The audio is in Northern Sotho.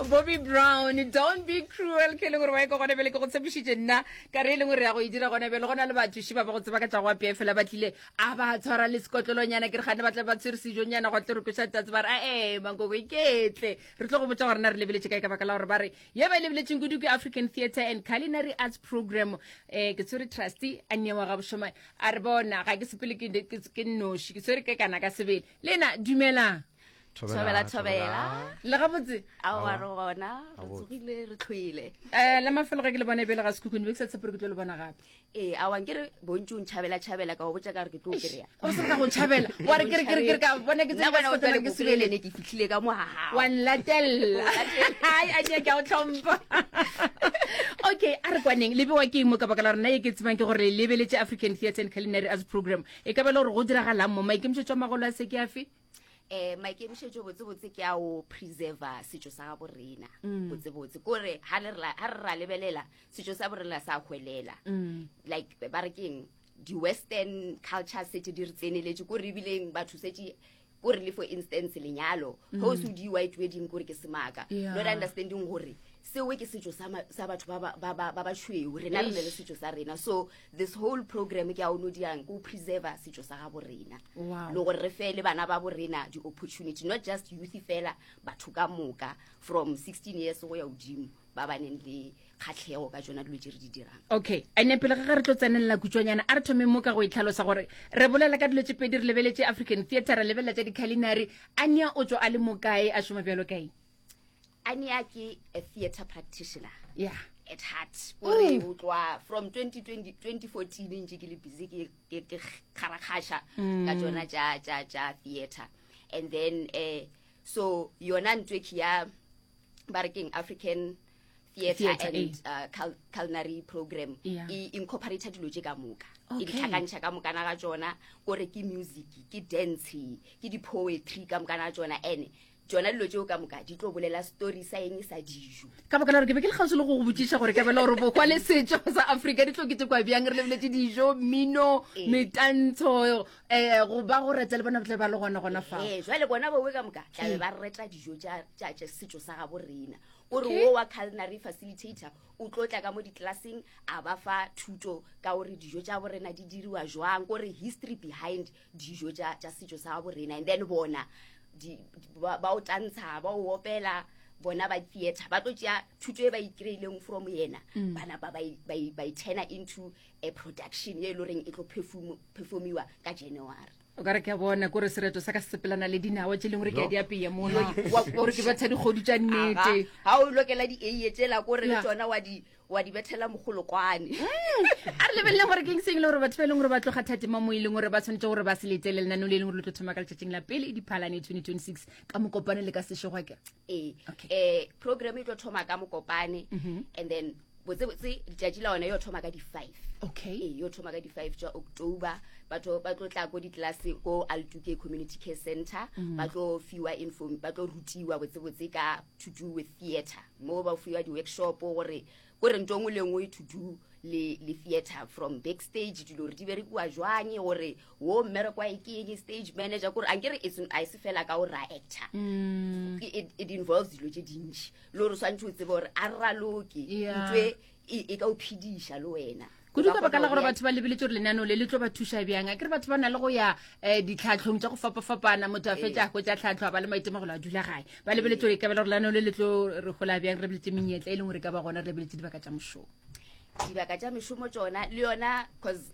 bobby brown don't be cruel ke e leng gore wa e ka gone bele ke go tshepišitše nna ka re e leng gore ya go e dira gone bele go na le bathuši ba ba go tseba ka tla go apea fela ba tlile a ba tshwara le sekotlolonyana ke re gane ba tla ba tshwere sejonyana go tle re kweša tatse ba re ae mankoko iketle re tlo go botsa gore na re lebeletše kae ka baka la gore ba re ye ba e lebeletseng kudu ke african theatre and culinary arts program um ke tshwere trusty a nyewa ga bošomane a re bona ga ke sepele ke nnoši ke tshwere ke kana ka sebele le na dumelang thobela thobela le gabotse aowa re gona re tsogile re tlhoile um le mafelo ge ke le bona e bele ga sekhukhune be ke sa tshepe re ke tlo le bona gape ee awang ke re bontsi o ntšhabela tšhabela ka o botsa ka re ke tlo kry-a o se ka go tšhabela wa re kere kere kere ka bona ke tsena ke sebelene ke fitlhile ka mogaga wa nlatelela ai a ke a o tlhompha okay a re kwaneng le bewa ke mo ka baka la rona e ke tsebang ke gore lebeletse african theatre and culinary as program e ka ba le gore go diragalang mo maikemišetso a magolo a se ke afe eh maikemišetšo botsebotse ke a o preserver setšo sa gabo rena mm. botsebotse kore ga re ra lebelela setšo sa borena sa hwelela mm. like ba re keng di-western culture sete di re tseneletse kore ebileng batho sete kore le for instance lenyalo mm. gose o di-white wedding kore ke semaka not understanding gore sewe ke setso sa batho ba bašweu rena re ne le setso sa rena so this whole program ke a ono diang ko preserver setso sa gabo rena le gore re fele bana ba bo rena di-opportunity not just youth fela batho ka moka from sixteen years go ya godimo ba ba neng le kgatlhego ka tsona dilo tse re di dirang okay ande pele ga ga re tlo tsenelela kutswanyana a re thome mo ka go itlhalosa gore re bolela ka dilo tse pedi re lebeletse african theatre re lebelela tsa di-culinary a nea o tswa a le mokae a šoma bjalo kae ania ke a theatre practitioner yeah at heart ore o tloa from 2014 ntse ke le busy ke ke ke kgarakgasha ka tsona tša tša tša theater and then eh so yona ntwe ke ya ba re keng african theater Theatre, and eh. uh, cul culinary program Yeah. e incorporate dilo tše ka moka e Okay. ditlhakantšha ka mokana ga tsona kore ke music ke dance ke di-poetry ka mokana ga tsona and tšona dilo tšeo ka moka di tlo bolela story sa eng sa dijo ka baka la gore ke be ke le kgauswi le go go botšiša gore kabela gore bokwa le setšo sa afrika di tlo kete kwa bjang re lebeletse dijo mmino ee. metantsho um eh, go ba go reta le bona tle ba le gona gona fa ee, jale bona bowe ka moka tlabe ee. ba reta dijo tša setšo sa gabo rena o re wo wa culinary facilitator o tlo tla ka mo ditlelaseng a ba fa thuto ka gore dijo tša borena di diriwa jwang kore history behind dijo tša tša setšo sa gabo rena and then bona di, ba, ba o tantsha ba o opela bona ba theatre ba tlo tšea thuto e ba ikreileng from yena mm. bana ba ba itena into a production ye e le goreng e tlo performiwa ka january o ka re ke a bona kore sereto sa ka se sepelana le dinawa tse e leng gore ke a di apeye mona gore ke batha dikgodu tša nnete ga o lokela di-ae tsela kore le tsona wa di wa di bethela mogolokwane a re lebelele gore ke seng le gore batho ba e leng gore ba tloga thate mo mo e leng gore ba tshwanetse gore ba se lete le lenaneo le e leng gore le tlo thoma ka letšatšing la pele diphalane 2026 ka mokopane le ka sešegwa ke ee Okay. eh program e tlo thoma ka mokopane Mhm. and then botsebotse letšatši la one yo thoma ka di-five okay ee yo thoma ka di-five tša october batho ba tlo tla ko ditlelase ko altuke community care center Mhm. ba tlo fiwa inform ba tlo rutiwa botsebotse ka to do with theatre mo ba fiwa di-workshop gore ko re nto ngwe le ngwe to do le, le theatre from backstage dilo gore di berekiwa jwanye gore wo mmerekwa e ke eng stage manager kore anke re e se fela ka gore ra actor mm. it, it involves dilo tse dintši le gore swantse o tsebe gore a raloke yeah. ntwe e, e ka o phediša le wena kudu ka baka la gore batho ba lebeletse gore lenaneo le le tlo ba thuša bjang a ke re batho ba na le go ya um ditlhatlhong tsa go fapafapana motho a ee. fetsa go tsa tlhatlho a ba le maitemogelo a dula gae ba lebeletse gore e kabela gore lenaneo le le tlo re gola bjang re lebeletse menyetla e leng gore e ka ba gona re lebeletse dibaka tsa mošomo dibaka tsa mešomo tsona le yona cause